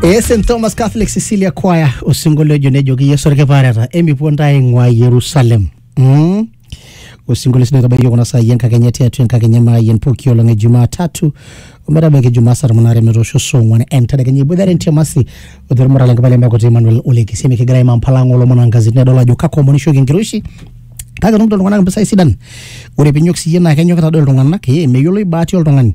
ee st thomas catholic cecilia choir osinkolio ojo nejoki yesu orkipaareta emipuo ntae aing'ua yerusalem mm. osinkolio sii naitabaiki yiok kuna saai enkakenya tiatua enkakenya maayian pooki olong e jumaa tatu ometabaiki jumaa saa tomon aare metoosho saa ong'uan entedekenya iboitare ntiamasi oteremora lenkipai lemekuti emmanuel olekisemi kigira aimaa mpala ang olomon ankazini nedol ajo kakwa omon ishoki enkiroshi kake etumito iltung'anak impisai sidan ore pinyok siyie naa kenyokita doi iltung'anak ee meyioloi baati oltung'ani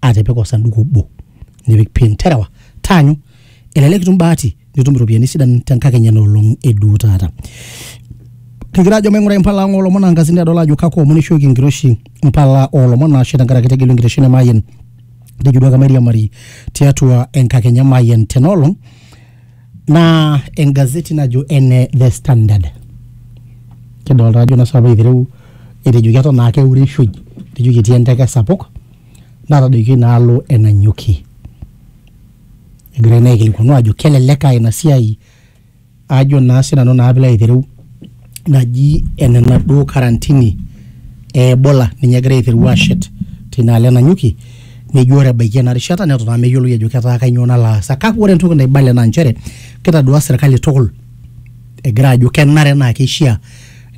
atipika osanduku obo nipik pin terewa taanyu elelek itum bahati nitum iropiyiani sidan tenkakenya enoolong eduo taata kigira ajo maing'ura impala ang oolomon ankasini adol ajo kakua omon ishooki enkiroshi impala oolomon ashe tenkaraki tegelu enkiroshi nemayian tejo duake mairiamari tiatua enkakenya mayian tenoolong naa engazeti najo ene the standard kidolta ajo ing'asa apa aitereu etejo keton aa keurishoi etejo ketii enteke sapuk natadoikio inaalo e Nanyuki egirai naa aikilikuanu ajo kelelek aa ina siai ajo naa sinanu naa piilo aitereu naji enena duo karantini e Ebola ninye egira aiteru ashet tinaalo enanyuki nejo ore ebaiki ena rishata neton aa meyioloi ajo ketaa kainyoo nalo aasa kake ore entoki naibale naa nchere kitadua serkali tukul egira ajo kenare naa keishia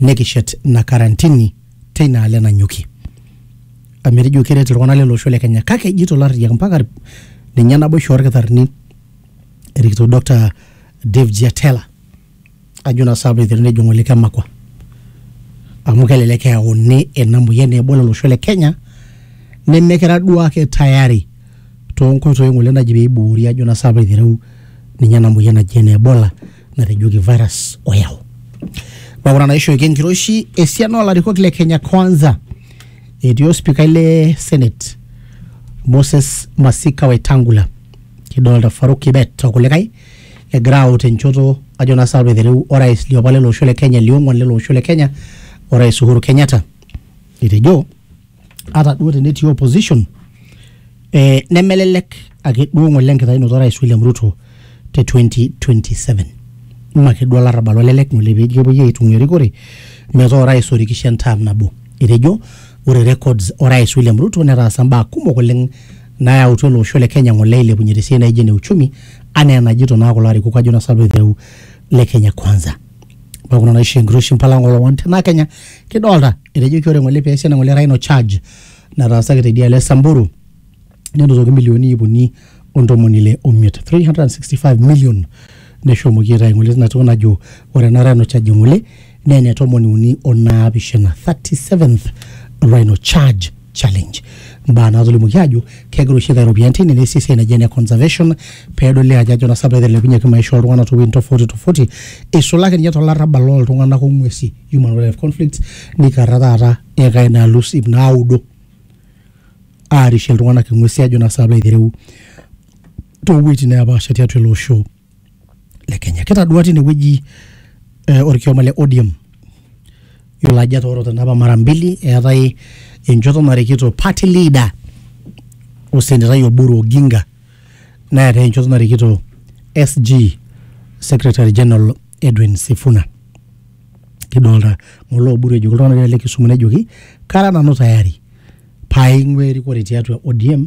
nekishet ina karantini teina alo enanyuki amu etejo keret iltung'anak lele osho le Kenya kake ejito ilarriyiak mpaka irp- ninye naboisho orkitarrini erikito Doctor Dave Jiatela ajo naa saapa eiteruni ajo ng'ole kemakwa amu kelelek eyauni ena moyian nebol olosho le Kenya nemekira duo ake tayari toonkoitoi ng'ole naji peiboori ajo naa saapa eitereu ninye ena moyian naji ene Ebola natejoki virus oyau. Neaku ina naishooki enkiroshi esiana olarikok le Kenya kwanza etii ospikai le senate Moses Masika Wetangula kidolta Farouk Kibet okulikae egira aut enchoto ajo naa sinanu aitereu orais liopa lele osho le Kenya liong'uan lele osho le Kenya orais Uhuru Kenyatta etejo ata duo tenetii opposition eh, nemelelek ake duo ng'ole enkitayunoto orais William Ruto te 2027 mme ake duo olarrabal olelek ng'ole peji kepuoi aitung'ua erikore metaa orais orikishe entaam nabo etejo ore records orais William Ruto netaasa imbaa kumok oleng nayautua ele osho le Kenya ng'ole ailepunye tesiai naijo ene uchumi anaa enajito naa kulo arikok ajo naa sanu aiteru le Kenya kwanza ore kuna naisho enkiroshi mpala ng'ole one tena Kenya kidolta etejoki ore ng'ole peesi ena ng'ole rhino charge nataasaki teidialo e Samburu nenotoki milioni iip uni ontomoni ile omiet 365 million neshomoki aitayu ng'ole tina toki najo ore ena rhino charge ng'ole naa ene tomoni uni onaapishana 37th rhino charge challenge mbaa naatolimuoki aajo kegira oshi aitayu iropiyiani tine neesi esiai naji ene conservation peedoli ajo ajo naa sabu etelepunyeki maisha oltung'anak towuejitin tofauti tofauti eisulaki ninye tolarrabal loltung'anak ong'uesi human wildlife conflicts nikarra taata ekai naalus ip naudo aarishie iltung'anak ing'uesi ajo naa sabu aitereu towuejitin nepaasha tiatua ele osho le Kenya. Kitadua tine wueji eh, orkioma le ODM yiolo ajo etoorote napa mara mbili eetae enchoto narikito party leader osenetai Oburu Oginga neetae enchoto narikito SG secretary general Edwin Sifuna kidolta ng'ole Oburu ejoki iltung'anak le Kisumu nejoki kara nanu tayari paaing'ua erikore tiatua ODM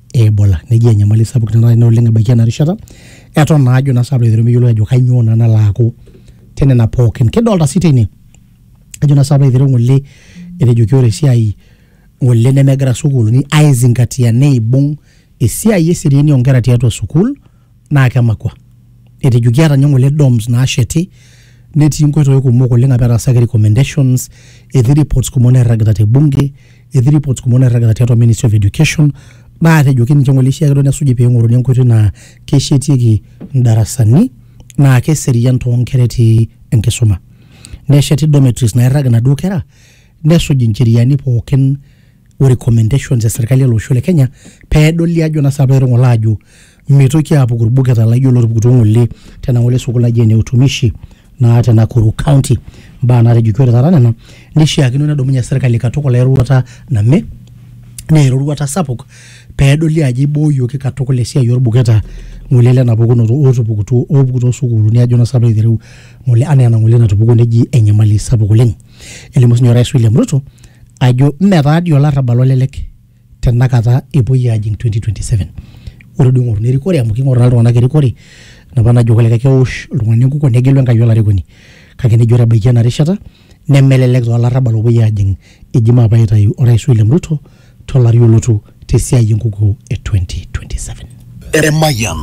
e Ebola. Neji enyamali sapuk tenakata ina oleng ebaiki ena rishata eton naa ajo naa sapuk aiteru meyioloi ajo kainyoo naa nalo aaku tenena pookin. Kidolta sii tene ajo naa sapuk aiteru ng'ole etejoki ore esiai ng'ole nemegira sukuuluni aizingatia neibung esiai eseriani oo nkera tiatua sukuul naa kemakua. Etejo kiata ninye ng'ole doms naasheti netii nkoitoi kumok oleng' apa etaasaki recommendations, etii reports kumok nairragita te bunge, etii reports kumok nairragita tiatua ministry of education naatejoki ninche ng'ole eishiaa ake duo nesuji peing'oruni enkoitoi naa keshetieki ndarasani naa keserian too nkera etii enkisuma. Nesheti dormitories naairrag inaduo kera nesuj ncheriani pookin o recommendations e serkali ele osho le Kenya pedoli ajo naa saapa etung'olo ajo mitoki apuku irbuketa laijo lotupukutuo ng'ole tena ng'ole sukuul naji ene utumishi naa te Nakuru county imbaa natejoki ore taata nena nishiakino nedumunye serkali katukul eroruata name naa eroruata sapuk pedoli ajo ibooyioki katukul esiai orbuketa ng'ole lena pukunoto otupukutuo opuku tosukuluni ajo naa saapa aiteru ng'ole anaa ena ng'ole natupukuo neji enyamali sapuk oleng. Elimu sinye Orais William Ruto ajo mme taa dii olarrabal olelek tenakata epuoi aajing 2027. Ore duo ing'oruni erikore amu king'oru naa iltung'anak erikore enapa najo kulikae kewosh oltung'ani enkukuo negelu Enkai olarikoni. Kake nejo ore ebaiki ena rishata nemelelek taa olarrabal opuoi aajing eji maape aitayu Orais William Ruto tolari olotu tesiai enkukuo e 2027. Emayian